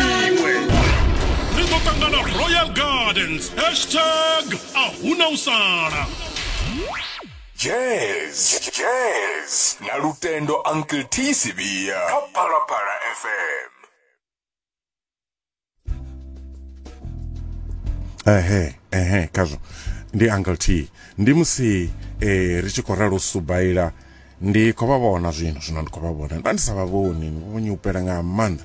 iwe ri ḓo ṱangana royal gardens hashtag a huna u sala jazz jazz na lutendo uncle t sivia kha phalaphala fm ehe ehe khazwo ndi uncle t ndi musi eh, ri tshi khou ralo subaila ndi khou vha vhona zwino zwino ndi khou vha vhona nda ndi sa vha vhoni vhonyi upela nga maanḓa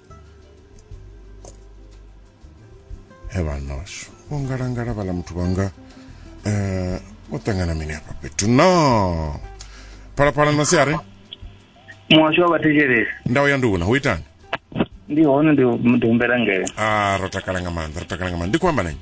evanos vho ngalangala vhala muthu vhanga um vho ṱangana mini hafha fhethu no phalaphala no siare muhasho wa vhathetshelesi ndau ya nduna hu itani ndi hone ndi humbela ngele a ah, ro takala nga maanḓa ro takala nga maanḓa ndi khou amba nanyi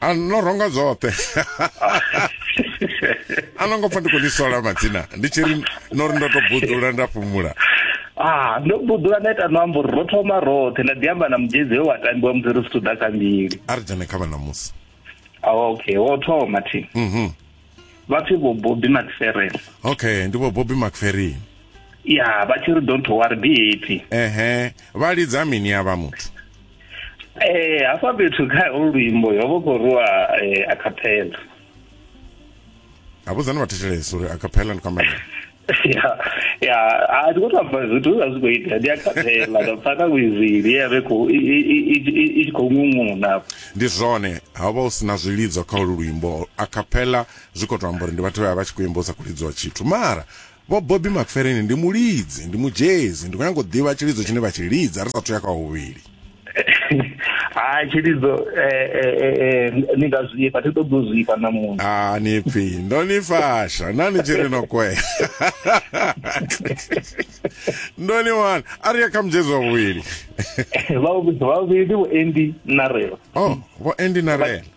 a no ronga dzoṱhe a no ngo pfa ndi khou ni sola madzina ndi tshi ri no ri ndo to buḓula nda fhumula ah ndo buḓula nda ita no ambo ri ro thoma roṱhe nda ḓi amba na mudzhedzi we wa tambiwa musi ri zwithu ḓa kha mbili a ri dzhene kha vhanamusi ah, okay wo thoma thi mm -hmm. vha pfi vho bobby macferel okay ndi vho bobby macferel ya vha tshi ri don't worry be happy ehe vha lidza mini ya vha muthu eh hafha fhethu kha olu luimbo yo vho khou rwa eh, a capella a vhudzani vhathetshelesi uri a capella ndi kwamela ya ya a ti khou tou amba zwithu zwa zwi khou ita ndi a khaphela nda pfha na wizili ye vhe khou i tshi khou ṅuṅuna ndi zwone ha vha u si na zwilidzo kha olu luimbo a khaphela zwi khou tou amba uri ndi vhathu vha vha tshi khou imba u sa khou lidziwa tshithu mara vho bobi makfereni ndi mulidzi ndi mujezi ndi khou nyanga u ḓivha tshilidzo tshine vha tshi lidza ri sa thu ya kha huvhili hayi tshilidzo eh, eh, eh, ni nga zwifha thi ṱoḓi u zwifha na muṅwe a ni pfi ndo ni fasha na ni tshi ri no kwea ndo ni wana a ri ya kha mudzedzi wa vhuvhili vhavhili vhuendi na rela o vho endi na rela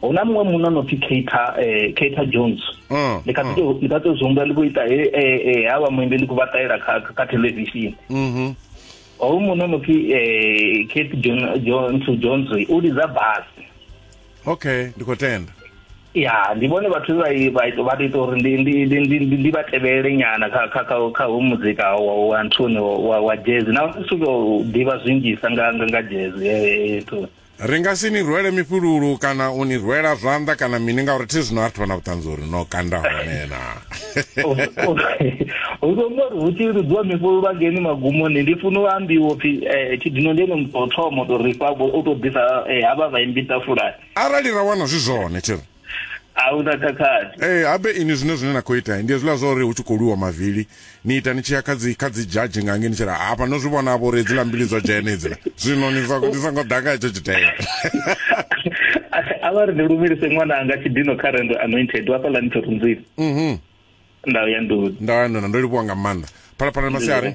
hu na muṅwe munna no pfi Keita eh Keita Jones mm, ndi kha ḓi mm. ndi kha ḓi zwi ndi vho ita he eh, eh, eh ha vha muimbi ndi ku vha ṱalela kha kha television mhm ho munna no pfi eh Keita Jones Jones u lidza bass okay ndi khou tenda ya ndi vhone vhathu vha vha ita uri ndi ndi ndi ndi ndi vha tevhele nyana kha kha kha kha hu muzika wa wa nthuni wa wa jazz na u suka ḓivha zwinzhisa nga nga jazz eh, eh, eh to Ri nga si ni rwele mifhululu kana u ni rwela zwanḓa kana mini ngauri thi zwino a ri thivha na vhuṱanzi uri no kanda hone na hu ḓo mbo ri hu tshi lidziwa mifhululu angeni magumoni ndi funa u ambiwa upfhi eh, tshidino ndi ene muthu o thoma u tou rifha u tou ḓisa eh, havha vhaimbi ṱafulani arali ra wana zwi zwone tshi ri a hu na khakhathi ee habe ini zwine zwine na khou ita ndi hezwiḽa zwa uri hu tshi khou lwiwa mavili ni ita ni tshi ya kha dzi kha dzi dzhadzhi nga ngei ni tshira hafha no zwi vhona vho uri hedziḽa mbili dzo dzhena hedziḽa zwino ni songo ni songo ḓa nga hetsho tshitela a vha ri ndi lumelise ṅwana anga tshidino kha rendo anointed wa fhaḽa ni thorunzini mhm ndau ya nduni ndau ya nduni ndo livhuwa nga maanḓa phalaphala masiari